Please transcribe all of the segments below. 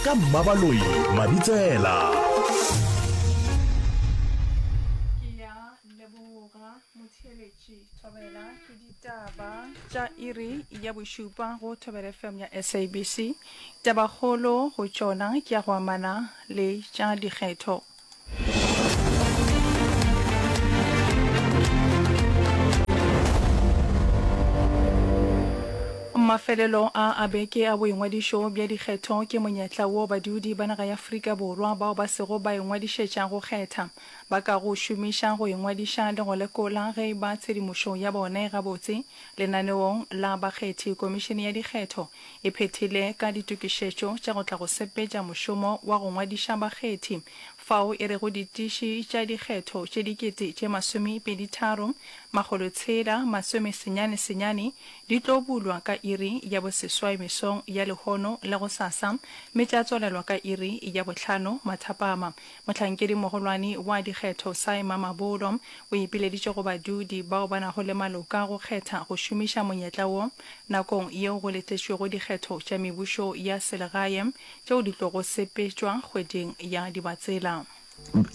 ka mmabaloi mabitsela ke ya leboga motheeletši thobela ke ditaba tša iri ya bošupa go thobela fm ya sabc tabakgolo go tšona ke ya go amana le tša dikgetho Mafelelo a a beke a boingwadišo bja dikgetho ke monyetla wo badudi ba naga ya Afrika Borwa bao ba sego ba ingwadišetša go kgetha ba ka go šomiša go ingwadiša le go lekola ge e ba tshedimošo ya bone gabotse lenaneong la bakgethi. Komišene ya Dikgetho e phethile ka ditokišetšo tša go tla go sepetša mošomo wa go ngwadiša bakgethi, fao e rego ditiši tša dikgetho tše dikete tše masomepedi tharo, makgolo tshela masome senyane senyane di tlo bulwa ka iri ya boseswai mesong ya lehono la gosasa mme tša tswalelwa ka iri ya bohlano mathapama. Mohlankedi-mogolwane wa dikgetho Sy Mamabolo o ipileditše go badudi bao ba nago le maloka go kgetha go šomiša monyetla wo nakong yeo go letletšwego dikgetho tša mebušo ya selegae tšeo di tlogo sepetšwa kgweding ya Dibatsela.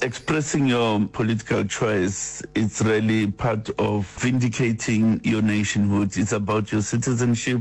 Expressing your political choice, it's really part of vindicating your nationhood, it's about your citizenship,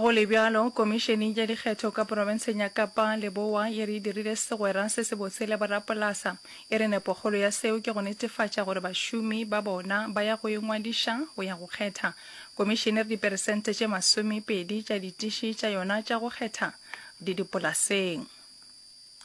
Go le bjalo, Komišene ya Dikgetho ka Profenseng ya Kapa Leboa e re e dirile segwera se sebotse le borapolasa. E re nepokgolo ya seo ke go netefatša gore bašomi ba bona ba ya go ingwadiša go ya go kgetha. Komišene e re diperesente tše masomepedi tša ditiši tša yona tša go kgetha di dipolaseng.